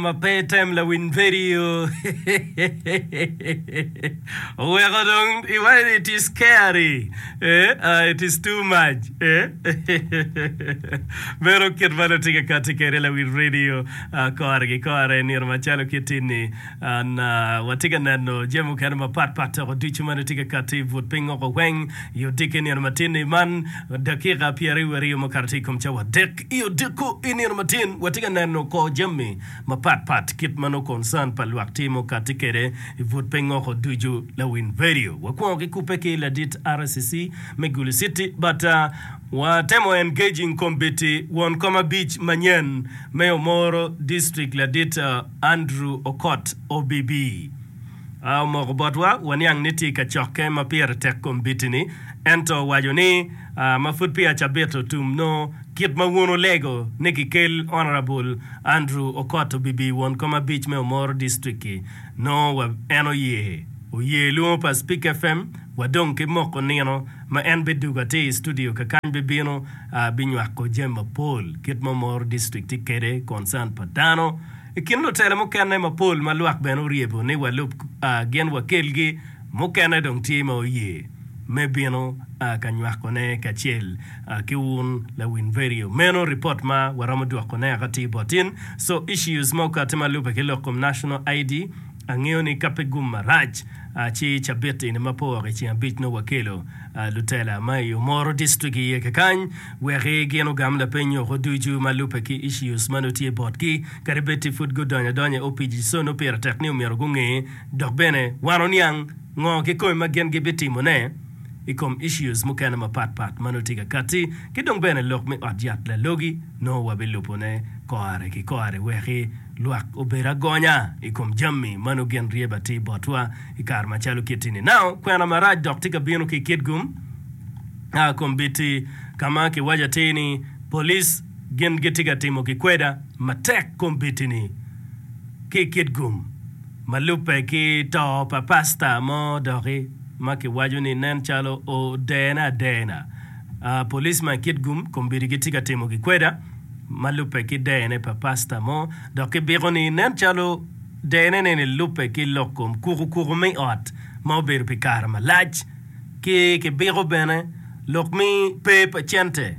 ma pe item lawiny pedio oweko dong iwaco it is scary eh it is too much eh meno kit ma nongo tye ka kati kwede lawiny radio kore ki kore nino macalo kiti ni watye ka neno jami mukene mapat pat dok ducu ma nongo tye ka kati but piny woko weng i odiki nino matin ni man dakika pyeraryo mukato i kom cawa adek I odiko i nino matin watye ka neno kor jami mapat pat kit ma nongo concern pa lwak timo kati kede i but pe ngoko ducu lawiny vedio wakwongo ki kupe ki ladit RCC me gulu city but wa temo engaging kombiti won kom abic manyen me omoro district ladit Andrew okot OBB omoko botwa waniang ni tye ka cokke ma pire tek kombiti ni ento owaco ni ma pud peya cabit otum nongo kit ma wun wulego ni kikel Honourable Andrew Okot obibi won kom abic me Omoro District-ki nongo wa en oye oye lwongo pa Speak FM wa dong ki moko nino ma en bidugo atir i studio kakany bibino binywako jami mapol kit ma Omoro District tye kede concern pa dano i kin lutela mukene mapol ma lwak bene oryebo ni walub gin wakelgi Mukene dong tye ma oye me bino ka nywakone kacel ki wun lawin vedio meno. Ripot ma waromo dwokone aka tye bot in. So issues ma okati ma lube ki lok kom National ID. Angeyo ni ka pe gum marac ci cabit eni ma pe owoko iceng abic nongo wakelo lutela ma i Omoro District iye kekany wek i gin ogam lapeny nyoko ducu ma lube ki issues ma nongo tye botgi kadi bed ti pud gudonyo adonya i opic so nongo pire tek ni omyero gunge Dok bene wan oniang ngo kikome ma gin gibitimone i kom issues mukene mapat pat ma nongo tye ka katti ki dong bene lok me ot yat lalogi nongo wabilubone kore ki kore weki lwak obed agonya i kom jammi ma nongo gin ryebe atir botwa i kare macalo kitti ni now kwena marac dok tye ka bino ki kit gum a kombiti kama kiwaco atir ni police Gin gitye ka timo ki kweda matek kombeddi-ni ki i kit gum ma lubbe ki to pa pasta mo doki ma kiwaco ni nen calo odene adena. Polis ma i kit gum kombeddi gitye ka timo ki kweda ma lubbe ki dene pa pasta mo dok kibiko ni nen calo denene-ni lubbe ki lok kom kuku kuku me ot ma obedo pi kare malac ki kibiko bene lok me pe pa cente.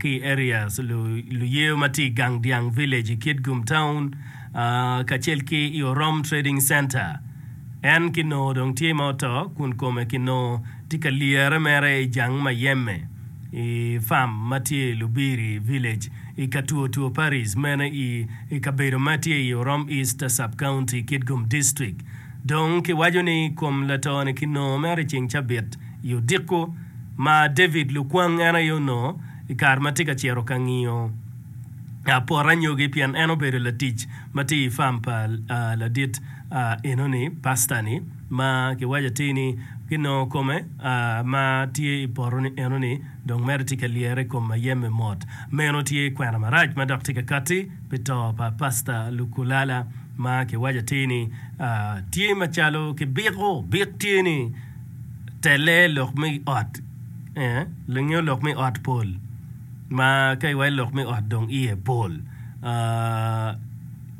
ki i areas luye ma tye i Gang Dyang Village i Kitgum Town kacel ki i Orom Trading Center. En kinongo dong tye ma oto kun kome kinongo tye ka lyere mere i jang mayeme i farm ma tye i Lubiri Village i Katwotwo Parish meno i kabedo ma tye i Orom East Sub-County, Kitgum District. Dong kiwaco ni kom lato-ni kinongo mere i ceng cabit. I odiko ma David lukwang en aye onongo i kare ma tye ka cito ka ngiyo pot anyogi pien en obedo latic ma tye i fam pa ladit enoni, pasta-ni, ma kiwaco atir ni kinongo kome ma tye i poto enoni dong mere tye ka lyere i kom mayem-mi mot. Meno tye kwena marac ma dok tye ka katti pi to pa Pasta Lukulala ma kiwaco atir ni tye macalo kibiko bik tye ni, telle lok me ot nyo lok me ot pol ma ka iwaco lok me ot dong iye pol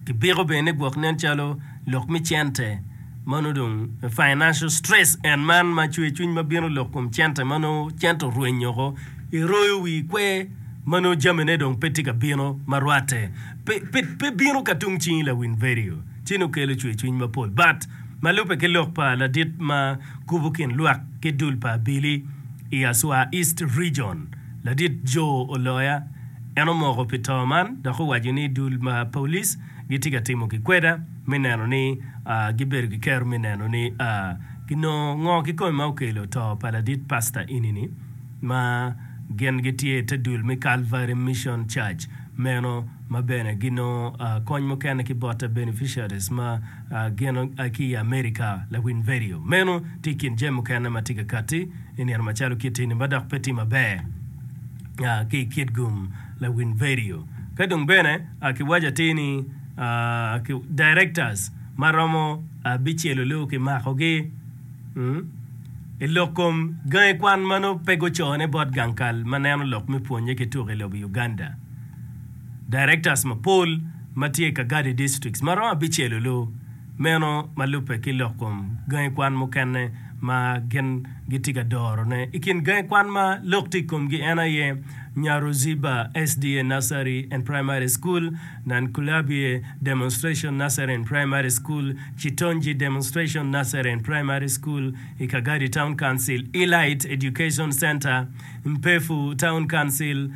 kibiko bene gwok nen calo lok me cente ma nongo dong financial stress and man ma cwer cwiny ma bino lok kom cente ma nongo cente orwenyo woko iroyo wii ikwer ma nongo jamine dong pe tye ka bino ma rwatte pe bino ka tung cingi lawil vedio ci nongo kelo cwer cwiny mapol but Ma lubbe ki lok pa ladit ma kubo kin lwak ki dul pa abili i Aswa East Region, Ladit Joe Oloya, en omoko pi to man dok owaco ni dul ma polic gitye ka timo gikweda me neno ni gibedo ki kero me neno ni ginongo ngo kikome ma okelo to pa ladit pasta eni-ni ma gin gitye i te dul me Calvary Mission Church meno ma bene ginongo kony mukene ki bote beneficiaries ma Ageno ki i Amerika, lawiny vedio meno tye i kin jami mukene ma tye ka katti i nino macalo kit ini ma dok pe tye maber ki i kit gum lawiny vedio. Ka dong bene kiwaco atir ni directors ma romo abicel onongo kimakogi i lok kom gangi kwan ma nongo pe gucone bot gang kal ma neno lok me pwonnye ki tuk i lobo Uganda. Directors mapol ma tye i Kagadi Districts ma romo abicel olu meno ma lubbe ki lok kom gangi kwan mukene ma gin gitye ka dorone. I kin gangi kwan ma lok tye i komgi en aye, Nyaruziba SDA Nursery and Primary School, Nankulabye Demonstration Nursery and Primary School, Chitonji Demonstration Nursery and Primary School, i Kagadi Town Council, Elite Education Centre, Mpefu Town Council,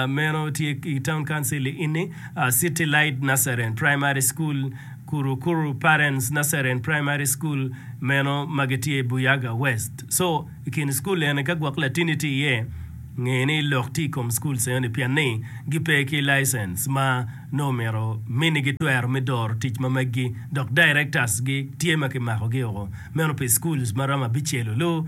Meno tye i Town Council i Ini, City Light Naseren Primary School, Kurukuru Parents Naseren Primary School, meno ma gitye i Buyaga West. Co i kin cukul eni ka gwok latini tye iye, nge ni lok tye i kom cukul eni pien ni gipe ki license ma nongo omyero minigi twero me doro tic ma meggi dok directors-gi tye ma kimakogi woko meno pi schools ma romo abicel-lu.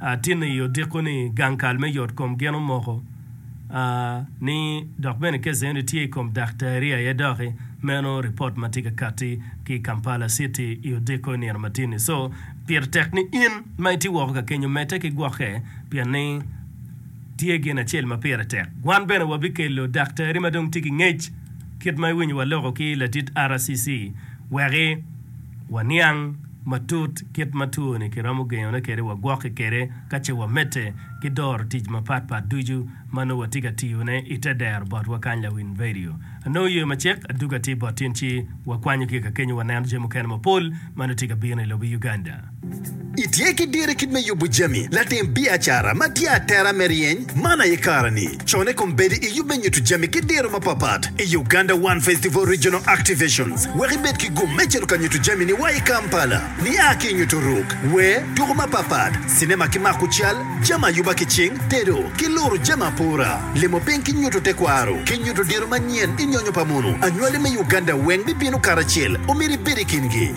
Atino i odiko ni gang kal me yot kom gin omoko a ni dok bene kece eni tye i kom daktari aye doki meno report ma tye ka kati ki Kampala city i odiko i nino matin ni so pire tek ni in ma itye woko ka kenyo mete ki gwoke pien ni tye gin acel ma pire tek wan bene wa bikelo daktari ma dong tye ki ngec kit ma iwinyo wa loko ki latit RCC wek i Waniang matut kit ma twoni kiromo gengone kwede wa gwokke kwede ka ce wamedde ki doro tic mapat pat ducu ma nongo watye ka tiyo ne i te dero bot wa kany lawiny vedio. Anongo yo macek aduga tye bot tin ci wakwanyo ki ka kenyo waneno jami mukene mapol ma nongo tye ka bino i lobo Uganda. Itye ki dir i kit me yubo jami, latim biacara ma tye atera me ryeny man aye kare-ni. Con i kom bedo i yub me nyuto jami ki diro mapapat i Uganda One Festival Regional Activations wek ibed ki gum me cito ka nyuto jami-ni wa i Kampala. Nia ki i nyuto ruk, wer, tuko mapapat, cinema ki mako cal, jami ayuba ki cing, tedo, ki luro jami apora, limo piny ki nyuto tekwaro, ki nyuto diro manyen i nyonyo pa mono, anywali me Uganda weng bibino karacel, omyero ibed i kingi.